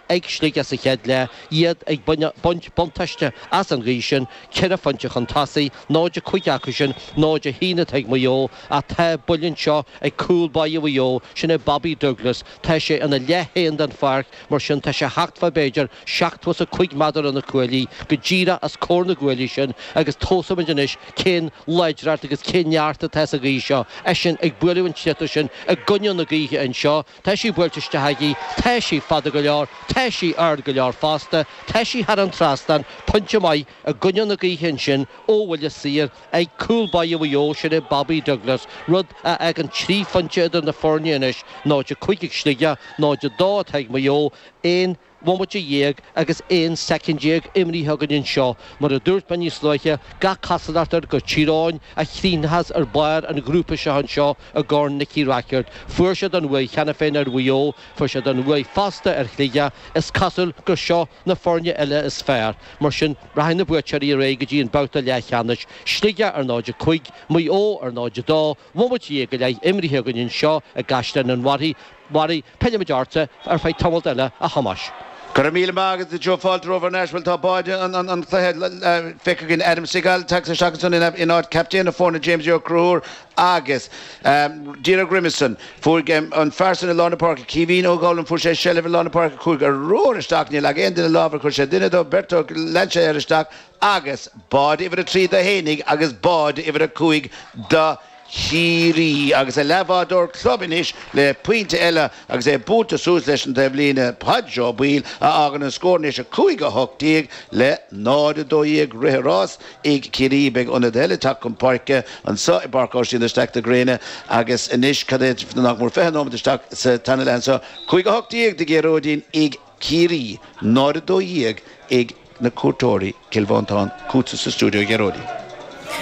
ag Sligigh sa chéad leath, iad ag baint buntáiste as an ghaoth sin, ceithre phointe chun tosaigh, 0-5 acu sin, 0-1 atá ag Maigh Eo, ach tá buille saor anseo ag cúl báire Mhaigh Eo, sin é Bobby Douglas. Tá sé ina leath féin den pháirc, mar sin tá sé déarfá b'fhéidir seachtó is a cúig méadar ó na cuaillí, go díreach os comhair na gcuaillí sin, agus tchífimid anois cén láidreacht agus cén neart atá sa ghaoth seo. Eisean ag bualadh an tsliotair sin i gcoinne na gaoithe anseo, Tá sí buailte isteach aige, tá sí fada go leor, tá sí ard go leor fosta, tá sí thar an trasnán pointe maith i gcoinne na gaoithe ansin ó bhuille saor ag cúl báire Mhaigh Eo, sin é Bobby Douglas, rud a fhágann trí phointe idir na foirne anois, 0-5 ag Sligigh, 0-2 atá ag Maigh Eo, aon bhomaite dhéag agus aon soicind déag imrithe againn anseo, mar a dúirt mé níos luaithe, gach cosúlacht air gur Tír Eoghain a chríochnóchas ar bharr an ghrúpa seo anseo i gCorn Nicky Rackard. Fuair siad an bhuaidh cheana féin ar Mhaigh Eo, fuair siad an bhuaidh fosta ar Shligigh, is cosúil gur seo na foirne eile is fearr. Mar sin, rachaidh na buaiteoirí ar aghaidh go dtí an babhta leathcheannais, Sligeach ar 0, 5, Maigh Eo ar 0, 2, bhomaite dhéag go leith imrithe againn anseo i gCaisleán an Bharraigh, Bharraigh. Pillfimid ortsa ar feadh tamaillt eile, a Thomáis. Go raibh míle maith agat, Joe. Fáilte romhat ar ais. Bhuel, tá báid an chluiche feicthe againn. Adam Segal tagtha isteach ansan in áit captaen na foirne, James Ó Conchúir, agus Dean Ó Grimison. Fuair an fear san i lár na páirce, Caoimhín Ó Gúilín, fuair sé seilbh i lár na páirce, chuaigh ar ruathar isteach, níor leag aon duine lámh air, chuir sé duine de, beirt de, lean sé air isteach agus báide uimhir a trí dó féinig agus báide uimhir a cúig do Chiarraí agus a leathbhádóir club anois le pointe eile agus é buailte suas leis an taibhlíne, Pádraig Ó Baoill, a fhágann an scór anois 5 a 18 le 0 a 12 rith an ráis ag Ciarraí. Beidh ionadaí eile ag teacht chun páirce anso i bPáirc Aibhistín de Staic fén ngréin agus anois cad é nach mór 20 nóiméad isteach sa tarna leath anso, 5 a 18 a Ghearóidín ag Ciarraí, 0-12 ag na cuairteoirí, Cill Mhantáin, chughatsa sa stiúideo a Ghearóidín.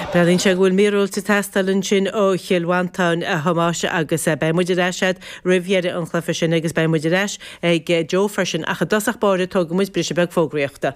Breathnaíonn sé go bhfuil míorúilt ag teastáil ansin ó Chill Mhantáin, a Thomáis, agus beidh muid ar ais agat roimh dheireadh an chluiche sin agus beidh muid ar ais ag Joe freisin ach i dtosach báire tógfaidh muid briseadh beag fógraíochta.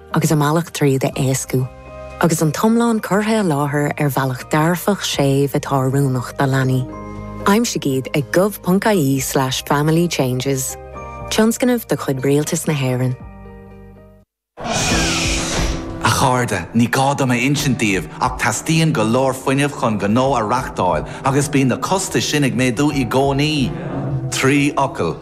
agus a mbealach tríd a éascú, agus an t-iomlán curtha i láthair ar bhealach dearfach séimh atá oiriúnach do leanaí. Aimsigh iad ag gov.ie slash family changes. Tionscnamh de chuid Rialtas na hÉireann. A chairde, ní gá dom a insint daoibh ach teastaíonn go leor fuinnimh chun gnó a reachtáil agus bíonn na costais sin ag méadú i gcónaí. Trí fhocal.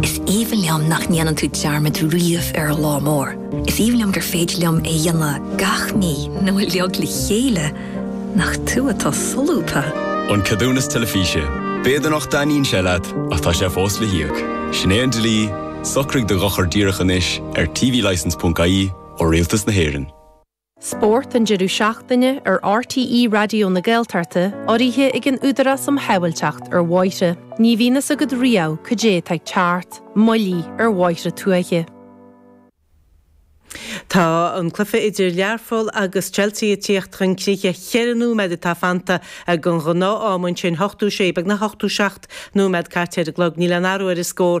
Is aoibhinn liom nach ndéanann tú dearmad riamh ar lá mór. Is aoibhinn liom gur féidir liom é a dhéanamh gach mí nó uilig le chéile nach tú atá solúbtha. An Ceadúnas Teilifíse. B'fhéidir nach dtaitníonn sé leat, ach tá sé fós le híoc. Sin é an dlí, socraigh do dhochar díreach anois ar tvlicense.ie ó Rialtas na hÉireann. Spórt an deireadh seachtaine ar RTÉ Raidió na Gaeltachta, urraithe ag an Údarás um Shábháilteacht ar Bhóithre. Ní bhíonn fhios agat riamh cad é atá ag teacht, moilligh ar bhóithre tuaithe. Tá an cluiche idir Learpholl agus Chelsea ag tíocht chun críche. Ceithre nóiméad atá fanta den ghnáth-am ansin, ochtó sé, beagnach ochtó seacht nóiméad caite ar an gclog. Níl aon athrú ar an scór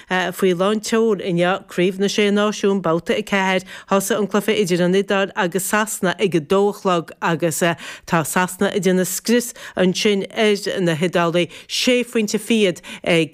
Faoi lán tseoil inniu, Craobh na Sé Náisiún, Babhta 4, thosaigh an cluiche idir an Iodáil agus Sasana ag a dó a chlog agus tá Sasana ag déanamh scrios ansin ar na hIodálaigh, sé phointe fichead ag.